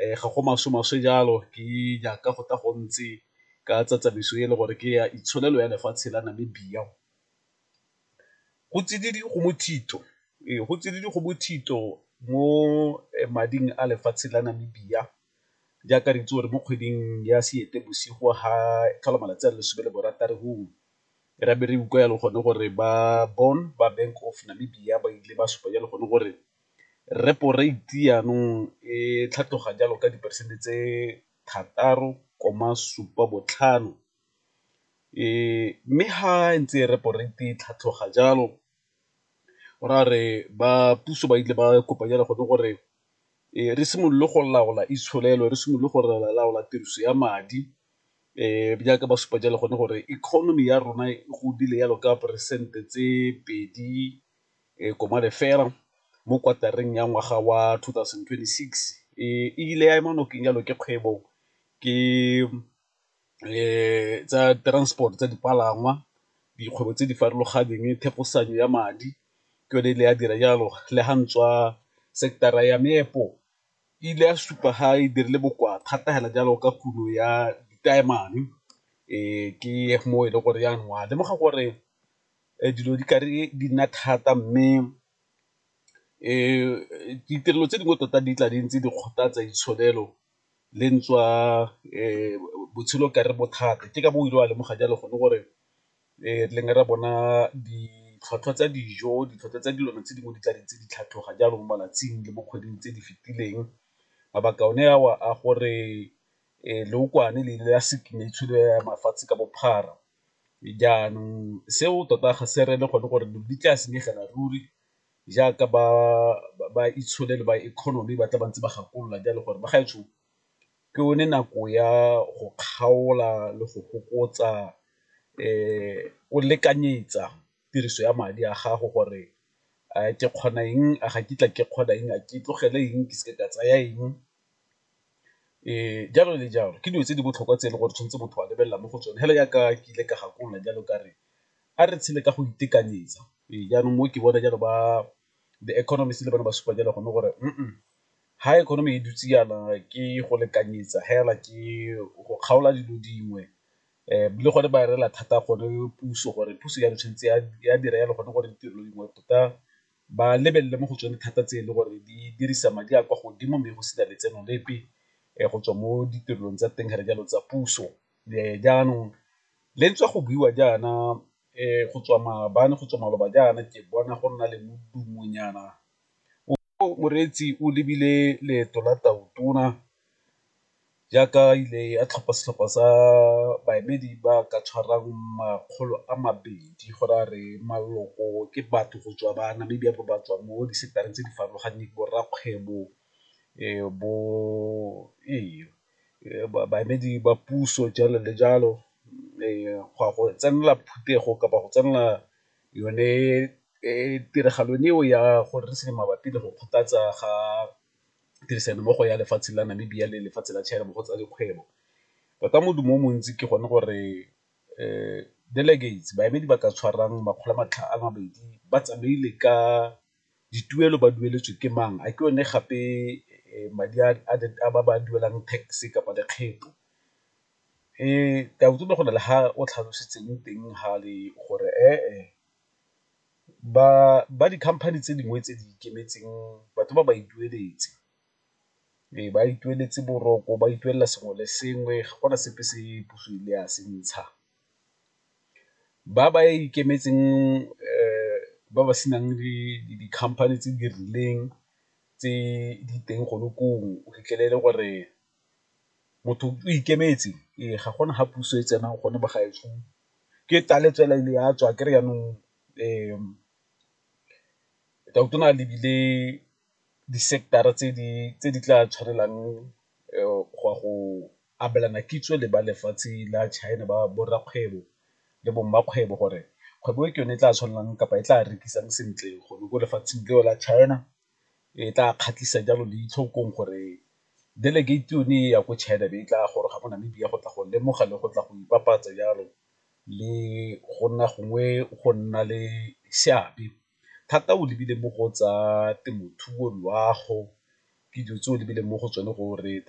ga go maswe maswe jalo ke jaaka go tla go ntse ka tsa tsamaiso e le gore ke ya itsholelo ya lefatshe la Namibia. Go tsididi go mothito, ee go tsididi go mothito mo mading a lefatshe la Namibia jaaka re itse gore mo kgweding ya Seetebosigo ga tlhola malatsi a le lesome le borataro go re be re utlwa ya le gone gore ba Bond ba Bank of Namibia ba ile ba supa ya le gone gore Repo rate jaanong e tlhatloga jalo ka diperesente tse 6,75 mme ga ntse repo rate e tlhatloga jalo go raya gore ba puso ba ile ba kopa jalo gone gore re simolole go laola itsholelo, re simolole go laola tiriso ya madi jaaka ba supa jalo gone gore economy ya rona e godile jalo ka peresente tse pedi. e koma lefela mo kwatareng ya ngwaga wa 2026 e ile ya ema nokeng jalo ke kgwebo ke tsa transport tsa dipalangwa dikgwebo tse di farologaneng thefosanyo ya madi ke yone e le ya dira jalo le ga ntswa sector-ra ya meepo e ile ya supa ga e dirile bokoa thata fela jalo ka kuno ya ditaemane ke mo e le gore ya nwa lemoga gore dilo di ka re di nna thata mme ditirelo tse dingwe tota di tla di ntse di kgothatsa ditsholofelo le ntswa botshelo ka re bothata ke ka bo o ile wa lemoga jalo gone gore re leng re bona ditlhwatlhwa tsa dijo, ditlhwatlhwa tsa dilwana tse dingwe di tla di ntse di tlhatlhoga jalo mo malatsing le mo kgweding tse di fetileng, mabaka one a o a gore leokwane le ile la ya mafatshe ka bophara Jaanong seo tota ga se reye gone gore dilo di tla senyegela ruri jaaka ba itshole le ba economy ba tla ba ntse ba gakolola jalo gore bagaetsho ke yone nako ya go kgaola le go fokotsa o lekanyetsa tiriso ya madi a gago gore a ke kgona eng, a ga kitla ke kgona eng, a ke tlogele eng, ke seke ka tsaya eng. Jalo le jalo, ke dilo tse di botlhokwa tse e le gore tshwanetse motho a lebelela mo go tsone fela jaaka ke ile ka gakolola jalo ka re a re tshele ka go itekanyetsa. Ee, jaanong mo ke bona jalo ba the economist le bone ba supa jalo gone gore ha economy e dutse jaana ke go lekanyetsa fela ke go kgaola dilo dingwe le gone ba rela thata gone puso gore puso jalo tshwanetse ya dira jalo gone gore ditirelo dingwe tota ba lebelele mo go tsone thata tse e le gore di dirisa madi a kwa godimo mme go sena letseno lepe go tswa mo ditirelong tsa teng re jalo tsa puso. Jaanong le ntswa go buiwa jaana go tswa maabane go tswa maloba jaana ke bona go nna le modumo nyana o moreetsi o lebile leeto la tau tona. jaaka e ile ya tlhopha setlhopha sa baemedi ba ka tshwarang makgolo a mabedi go raya re maloko ke batho go tswa ba Namibia ba ba tswang mo disetareng tse di farologaneng, bo rrakgwebo bo ee baemedi ba puso jalo le jalo go ya go tsenela phutego kapa go tsenela yone tiragalo eo ya gore re seng mabapi le go kgothatsa ga tirisanommogo ya lefatshe la Namibia le lefatshe la China mo go tsa dikgwebo. Tota modumo o montsi ke gone gore delegates, baemedi ba ka tshwarang makgolo a matlhano a mabedi ba tsamaile ka dituelo ba dueletswe ke mang, a ke one gape madi a ba ba duelang tax kapa lekgetho. Ke a utlwa go na le ha o tlhalositseng teng fale gore . Ba di-company tse dingwe tse di ikemetseng batho ba ba itueletse, ee ba itueletse boroko, ba ituelela sengwe le sengwe ga gona sepe se puso e ile ya se ntsha. Ba ba ikemetseng ba ba senang di-company tse di rileng tse di teng gone koo o fitlhele e le gore motho o ikemetse ee ga gona ga puso e tsenang gone bo gaetsho ke taletshwela e le ya tswa kry-e jaanong o ne a lebile di-sector-ra tse di tla tshwanelang go ya go abelana kitso le ba lefatshe la China ba bo rrakgwebo le bo mmakgwebo gore kgwebo e ke yone e tla tshwanelang kapa e tla rekisang sentle gone ko lefatsheng leo la China. e tla kgatlhisa jalo leitlho gong gore delegate yone e ya ko China e be e tla goroga mo Namibia go tla go lemoga le go tla go ipapatsa jalo le go nna gongwe go nna le seabe thata o lebile mo go tsa temothuo, loago ke dilo tse o lebile mo go tsone gore tota.